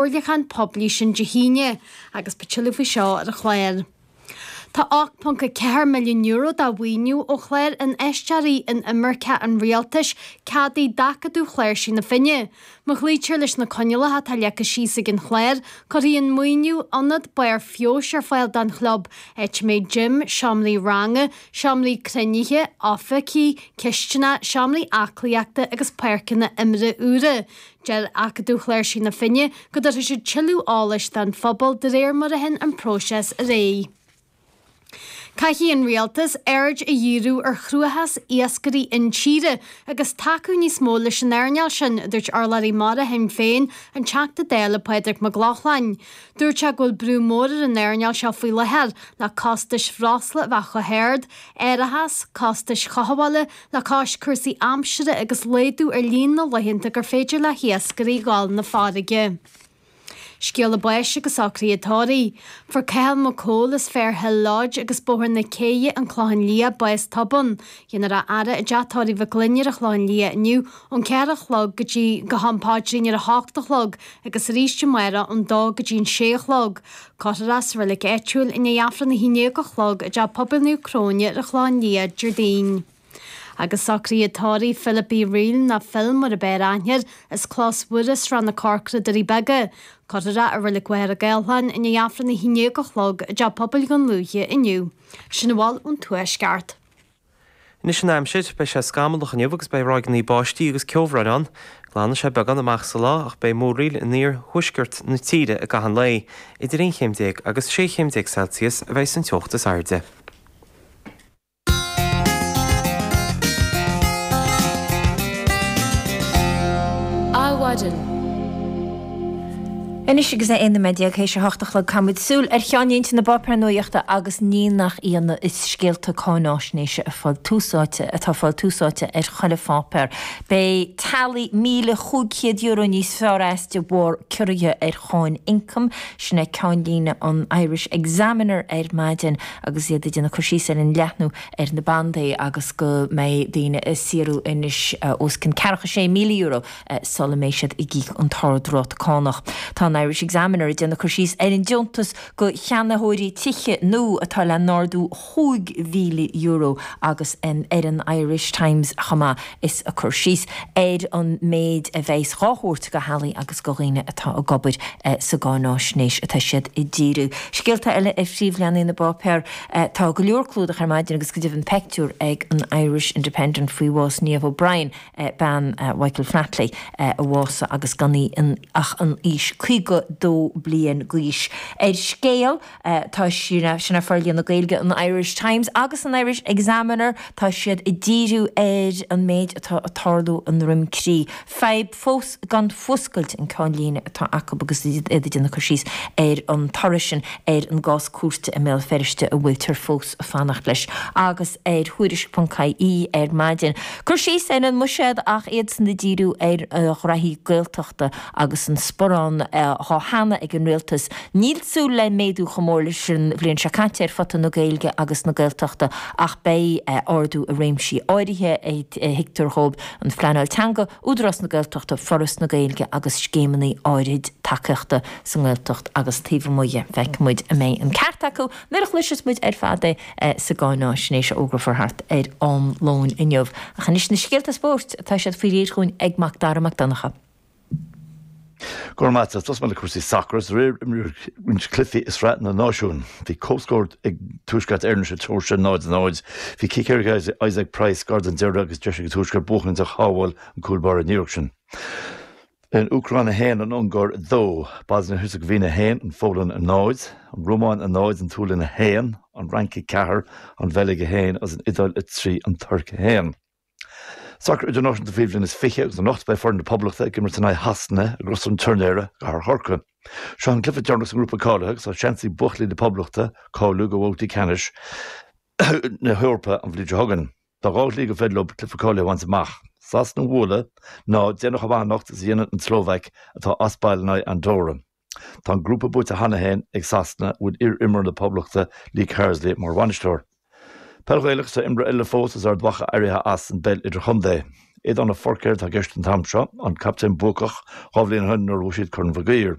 chomhairliúchán poiblí sin Dé hAoine agus beidh tuilleadh faoi seo ar an chlár. Tá €8.4 milliún de mhaoiniú ó Chlár Infheisteoirí Inimirce an Rialtais ceadaithe d'Acadamh Chláirsigh na Finne. Má chloítear leis na coinníollacha atá leagtha síos ag an chlár, cuirfidh an maoiniú ionad barr feabhais ar fáil don chlub, áit a mbeidh gym, seomraí ranga, seomraí cruinnithe, oifigí, cisteanach, seomraí aclaíochta agus páirceanna imeartha úra. Deir Acadamh Chláirsigh na Finne go dtabharfaidh siad tuilleadh eolais don phobal de réir mar a théann an próiseas ar aghaidh. Caithfidh an Rialtas aird a dhíriú ar chruachás iascairí intíre agus tacú níos mó leis an earnáil sin, a dúirt urlabhraí mara Shinn Féin, an Teachta Dála Pádraig Mac Lochlainn. Dúirt sé go bhfuil brú mór ar an earnáil seo faoi láthair le costais bhreosla a bheith chomh hard, árachas, costais chothabhála, Le cois cúrsaí aimsire agus laghdú ar líon na laethanta gur féidir le hiascairí dhul na farraige, Scéala báis agus socruithe tórraimh, fuair Cathal Mac Cumhaill as Fair Hill Lodge agus Bóthar na Céidhe, An Clochán Liath, bás tobann, déanfar é a fhaire i dteach tórraimh Mhic Fhloinn ar an Chlochán Liath inniu ón ceathair a chlog go dtí go ham paidrín ar a hocht a chlog agus arís amárach ón dó go dtí an sé a chlog. Cuirfear é sa reilig áitiúil i ndiaidh Aifreann a haon déag a chlog i dTeach Pobail Naomh Cróine ar an Chlochán Liath, Déardaoin. Agus socruithe tórraimh Philip Uí Fhrighil, nó Phil mar ab fhearr aithne air, as Clós Mhuire, Srath na Corcra, Doirí Beaga, cuirfear é i Reilig Mhachaire Gathlán i ndiaidh Aifreann a haon déag a chlog i dTeach Pobail Dhún Lúiche inniu. Sin a bhfuil ón Tuaisceart. Anois an aimsir, beidh sé scamallach inniu agus beidh ráigeanna báistí agus ceobhráin ann. Glanfaidh sé beagán amach sa lá ach beidh múraíl in iarthuaisceart na tíre i gcaitheamh an lae, idir 11 chéim agus 16 chéim Celsius a bheidh sa teocht is airde. Adhmhaidin. Anois agus é 11 nóiméad tar éis a hocht a chlog caithfimid súil ar cheannlínte na bpáipéar nuaíochta agus ní nach ionadh is scéalta cáinaisnéise a fáil tús áite atá ag fáil tús áite ar chuile pháipéar. Beidh teaghlaigh míle cúig chéad euro níos fearr as de bharr ciorruithe ar cháin ioncaim. Sin é ceannlíne an Irish Examiner ar maidin agus iad ag déanamh cur síos ar an leathnú ar na bandaí agus go mbeidh daoine ag saothrú anois os cionn ceathracha sé míle euro. sula mbeidh siad ag íoc an t-ardráta cánach. Tá an Irish Examiner ag déanamh cur síos ar an deontas do cheannaitheoirí tithe nua atá le n-ardú chúig mhíle euro agus ar an Irish Times chomh maith is ag cur síos ar an méid a bheas dhá thabhairt do theaghlaigh agus do dhaoine atá ag obair sa gcáinaisnéis atá siad ag díriú. Scéalta eile ar phríomhleathanaigh na bpáipéar. Tá go leor clúdach ar maidin agus go deimhin peictiúr ag an Irish Independent faoi bhás Niamh O'Brien a. bean Mhichael Flatley, a bhásaigh agus gan í ach an aois 52 bliain d'aois. Ar Scéal tá sin é forlíonadh Gaeilge an Irish Times agus an Irish Examiner, tá siad ag díriú ar an méid atá ag tarlú i nDroim Crí. Fadhb fós gan fuascailt an ceannlíne atá acu agus iad ag déanamh cur síos ar an toradh sin ar an gcás cúirte i mBéal Feirste a bhfuiltear fós fanacht leis agus ar Tuairisc.ie ar maidin. Cur síos ar an mbuiséad ach iadsan ag díriú ar ghraithí Gaeltachta agus an sparán atá cheana ag an Rialtas. Níl súil le méadú chomh mór leis an bhliain seo caite ar phota na Gaeilge agus na Gaeltachta ach beidh ardú i réimsí áirithe a thuigtear dhóibh, an phleanáil teanga, Údarás na Gaeltachta, Foras na Gaeilge agus scéimeanna áirid tacaíochta sa nGaeltacht agus taobh amuigh dhe. Feicfidh muid an mbeidh an ceart acu. Nuair a chloiseas muid ar fad é sa gcáináisnéis a fhógrafar thart ar am lóin inniu. Ach anois na scéalta spóirt, tá siad faoi réir chugainn ag Mac Dara Mac Donnchadha. Go raibh maith a't. Tosóidh muid le cúrsaí sacair. Is aréir a imríodh cluichí i Sraith na Náisiún. Bhí comhscór ag Tuaisceart Éireann sa tSeoirsia, 0, 0. Bhí cic éirice ag Isaac Price gar don deireadh agus deis ag an Tuaisceart buachaint ach shábháil an cúl báire an iarracht sin. An Úcráin 1 An Ungáir 2 Bosnia-Heirseagaivéin 1 An Pholainn 0 An Rómáin 0 An tSualainn 1 An Fhrainc 4 An Bheilg 1 agus an Iodáil 3 An Tuirc 1. Sacar idirnáisiúnta faoi bhliain is fiche agus anocht beidh foireann na Poblachta ag imirt in aghaidh Shasana i gCros an Tuirnéara i gCathair Chorcaí. Seo é an cluiche deireanach sa ngrúpa cáilithe agus tá seans ag buachaillí na Poblachta cáiliú do bhabhtaí ceannais na hEorpa an bhliain seo chugainn. Tá dhá shlí gur féidir leob cluiche cáilithe a bhaint amach. Sasana a bhualadh nó déanamh chomh maith anocht is a dhéanann an tSlóvaic atá as baile in aghaidh Andóra. Tá an grúpa buaite cheana féin ag Sasana, a bhfuil iar-imreoir na Poblachta Lee Carsley mar bhainisteoir. Peil Ghaelach Tá imreoir eile fós as Ard Mhacha éirithe as an bpeil idirchontae. Aidan Forker atá i gceist an t-am seo, an captaen buacach dhá bhliain ó shin nuair a bhuaigh siad Corn Mhic Uidhir.